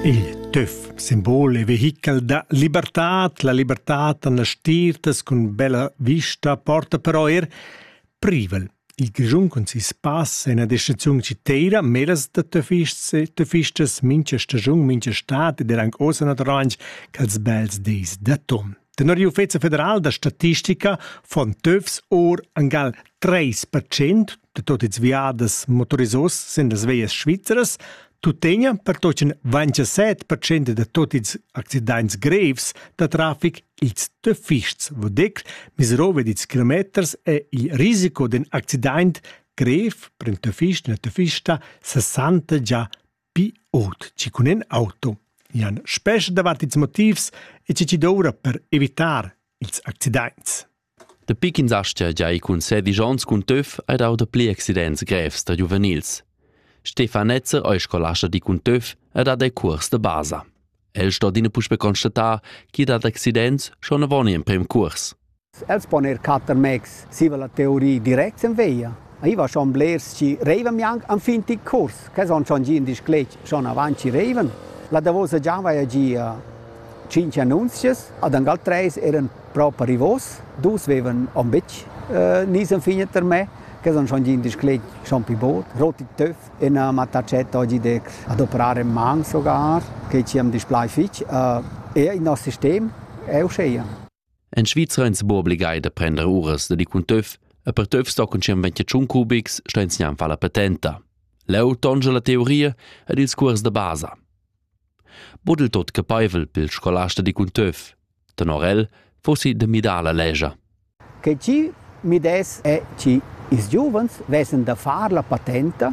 Il tüf simbol e vehichel da libertad, la libertad en las stirtas cun bella vista porta però er privel. Il Grischun cun sis pass è ina descriziun citeira meras da töfists e töfistas mincha stagiun, mincha stat ed er anche ossa naturalmaing cha'ls bels dis d'atun. Tenor l'Uffizio federal da statistica fon töfs or angal 3% de tot ils viadas motorisos sind las veias svizzeras tuttegna per tochen 27% de tot ils accidents grevs da trafic ils de fists vodec miserove dits kilometers e il risico den accident grev per in tofist na tofista 60 già pi ot ci cun en auto Jan spescha davat ils motivs e ci ci doura per evitar ils accidents. Dapi ch'ins aschia gia ei cun sedisch onns cun töf ei dau dapli accidents grevs da giuvenils. Stefan Netzer ei scolasta di cun töf ed ha dei cuors da basa. El sto adina puspei constatar ch'i dat accidents schon avon emprem cuors. Els pon er catter mez siva la teoria direct sen veia. Ei va schon blers chi reivan gnanc enfin tic curs, che son schon gia in disclet schon avant chi reivan. La davosa gia vaia gia tschinch annunzias, ad angal treis eran proper rivos, dus vevan on betg eh, nis enfin per me, che son schon gia in disclet schon pi bod, rot e töf e na m'attachet oggi der ad operare man sogar, che ci am displai fich. Eh, eir il nos sistem è uscheia. En Svizra ins bo obligai da prender uras da di cun töf e per töf sto cun tschient ventiatschun cubics sta ins gnanca la patenta. Leu tongia la teoria ed ils cuors da basa. Budel tot capeivel pil scolasta di cun töf. Tenor el fossi de midar la legia. Che ci mi des è ci ils giovens vessen da far la patenta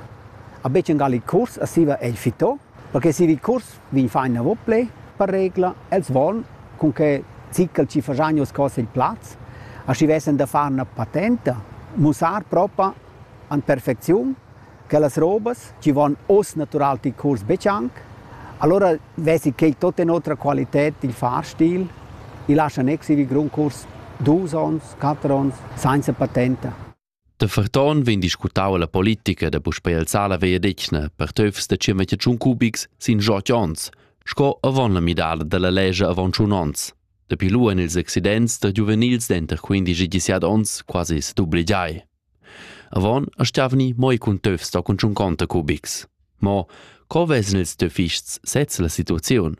a becen gal il curs a siva ei fito perché se il curs vegn fa inavo ple, per regla, els von cun che zickel ci fasagnos cose il plaz, a schi vessen da far una patenta, mussar propa an perfecziun che las robas ci von os natural il curs becianc, allora vesi che tot in otra qualität il fahrstil, i lascia nex ir grun curs dus ons, quattro ons, sainza patenta. Da ferton vegn discutau la politica da puspei alzar la vegliadetgna per töfs da tschiermetje tschun cubics sin ot onns, sco avon la midada dalla lescha avon tschun onns. Dapi lu ein ils accidents da giuvenils denter quindici e diciat onns quasi sedubligiai. Avon astgavni moi cun töfs da cun tschun conta cubics. Mo co vessen ils töfists sez la situaziun?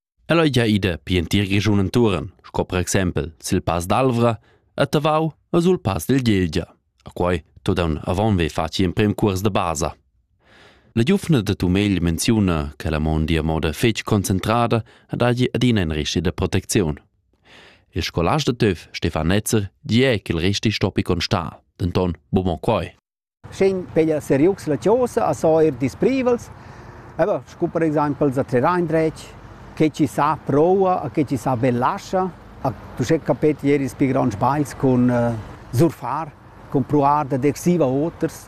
Ella ei gia ida pli entir Grischun entuorn, sco per exempel sil Pass d'Alvra, a Tavau e sul Pass del Gelgia. A quei todan avon ve faci emprem cuors de basa. La giuvna de Tumegl menziuna che la mondi a moda fetg concentrada ed hagi adina in resti de protecziun. Il scolast de Töf, Stefan Netzer, di è che il resti stoppi constar, denton buca quei. Sch'in peglia seriucs la chosa a so eir disprivels, e beh, scu per exaimpel za trer indretg, che chi sa proua a che chi sa be lascha, a uschè capet ier ils pi gronds bagls cun surfar, cun pruar dad exir a oters.